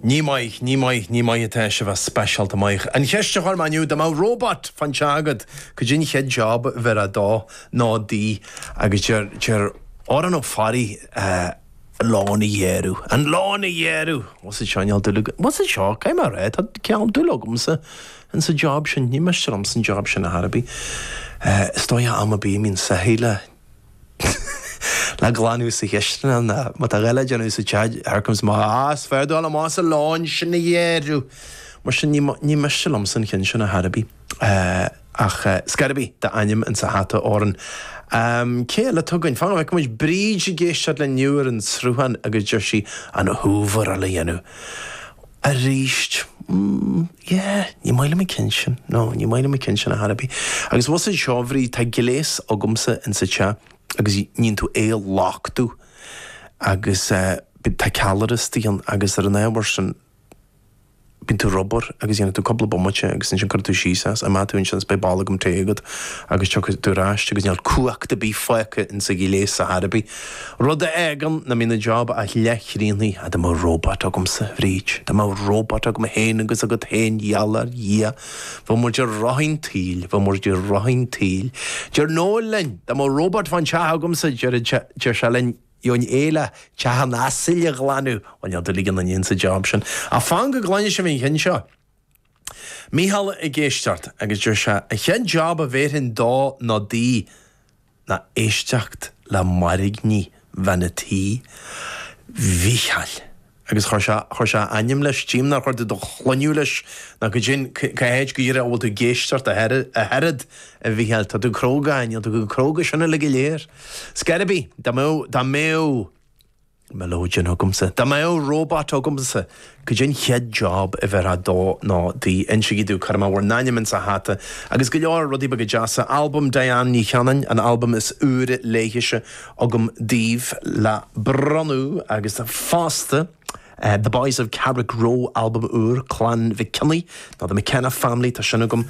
Ní maith, ní maith, ní maith atá sibh as speisialta maith. An cheist a chuir mé inniu, dá mbeadh robot fán teach agat, cad é an chéad job a bheirfeá dó nó di? Agus deir, deir Odhrán Ó Fearraigh, an lawn a ghearradh, an lawn a ghearradh! Bhfuil a fhios seo agat, bhfuil a fhios seo, cad é mar atá, tá cineál dúil agamsa in sa job sin, ní miste liom an job sin ar chor ar bith. Is dóigh am ar bith a mbíonn soithí le. le glanadh sa chistineach nó má tá a dhath le déanamh sa teach, here comes my ah is fearr dul amach is an lawn sin a ghearradh mar sin ní ní miste liomsa an ceann sin ar chor ar bith ach ar scor ar bith tá d'ainm in sa hata a Odhráin. Am cé eile atá againn? Fan go bhfeicfidh muid, Bríd ag éisteacht linn inniu ar an tSruthán agus deir sí an hoover a dhéanamh. Arís, mm, yeah, ní maith liom an ceann sin, no, ní maith liom an ceann sin ar chor ar bith. Agus bhfuil a fhios seo a Bhríd, tá gléas agamsa insa teach agus níonn tú é a luchtú agus eh, bíonn, tá ceallra istigh ann agus ar an ábhar sin bíonn tú ag obair agus dhéanann tú cúpla bomaite agus ansin cuireann tú síos é is imeoidh tú ansin is beidh bolgam tae agat agus tiocfaidh tú ar ais agus níl cumhacht ar bith fágtha insa ghléas ar chor ar bith. Rud a fhágann nach mbíonn an job ach leathchríochnaithe, ah, dá mbeadh robot agamsa, a Bhríd, dá mbeadh robot agam féin agus agat féin, gheall ar Dhia, bheadh muid i rith an tsaoil, bheadh muid i rith an tsaoil. Deir Noel linn, dá mbeadh robot fán teach agamsa, deir sé linn, gheobhainn é le teach an asail a ghlanadh, bhuel, níl dúil ag éinne insa job sin. Ach fan go gcluine sibh an ceann seo. Mícheál ag éisteacht agus deir sé, an chéad job a bhéarfainn dó nó di, ná éisteacht le mairgní bhean a' tí, Mhícheáil, agus chuir sé, chuir sé a ainm leis, tchím, nár chuir tú do shloinneadh leis, ná go deimhin, cá háit go díreach a bhfuil tú ag éisteacht ach oiread, a Mhícheáil, tá tú cróga, ach níl tú chomh cróga sin uilig go léir. Ar scor ar bith, dá mbeadh, dá mbeadh. mileoidean agamsa. Dá mbeadh robot agamsa, cad é an chéad job a bheirfeá dó nó di, insígí domh, cuirfidh mé bhur n-ainm insa hata agus go leor rudaí beaga deasa. Albam Diane Ní Chanainn, an albam is úire léithise agam daoibh le bronnadh agus fosta The Boys of Carrickroe, albam úr Chlann Mhic Cionnaith Nó the McKenna family, tá sin agam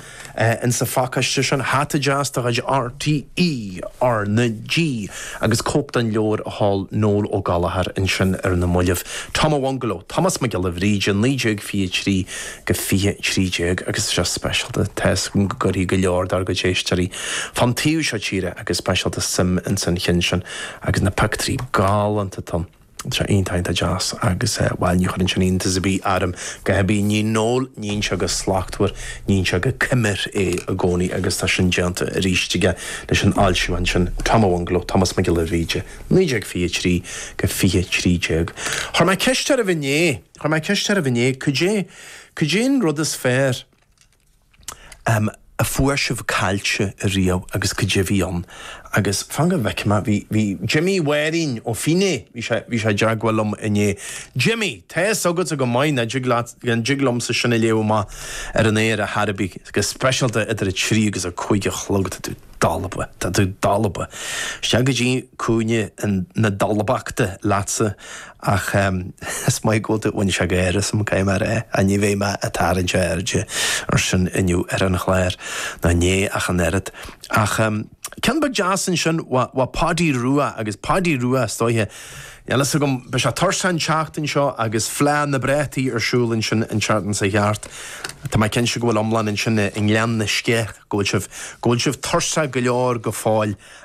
in sa phacáiste sin, hata deas de chuid RTÉ RnaG agus cóip den leabhar a sheol Noel Ó Gallchóir ansin ar na mallaibh. Tom a Bhungalow, Tomás Mac Giolla Bhríde 1923-2013 agus tá sé speisialta, tá's agam go gcuirfidh go leor dár gcuid éisteoirí fán taobh seo tíre go speisialta suim in san chinn sin agus na pioctúirí galánta atá ann. Tá iontach iontach deas agus bhail ní chuireann sin iontas ar bith orm ar chor ar bith. Ní Noel, níonn sé go slachtmhar, níonn sé go coimir é i gcónaí agus tá sin déanta arís aige leis an fhoilseachán sin, Tom Ó Anglo, Tomás Mac Giolla Bhríde, 1923-2013. Chuir mé ceist oraibh inné, chuir mé ceist oraibh inné, cad é, cad é an rud is fearr Am a fuair sibh caillte ariamh agus cad é a bhí ann agus fan go bhfeicfidh mé bhí bhí Jimmy Mháirín ó Fine bhí sé bhí sé i dteagmháil liom inné Jimmy tá a fhios agatsa go maith nach dtig leat nach dtig liomsa sin a léamh amach ar an aer ar chor ar bith go speisialta idir a trí agus a cúig a chlog tá tú dalba. Tá tú dalba. Isteach go dtí cúinne na dalbachta leatsa ach is maith go bhfuil tú. Bhain sé gáire asam, caithfidh mé a rá, ní bheidh mé ag tarraingt airde ar sin inniu ar an chlár. Ná inné ach an oiread. Ach ceann beag deas ansin, Bhí Páidí Rua, agus Páidí Rua is dóiche, Níl a fhios agam, beidh sé tuirseach an tseachtain seo agus Fleadh na bPréataí ar siúl ansin an tseachtain seo thart. Tá mé cinnte go bhfuil iomlán ansin i ngleann na sceith, go bhfuil sibh, go bhfuil sibh tuirseach go leor go fóill.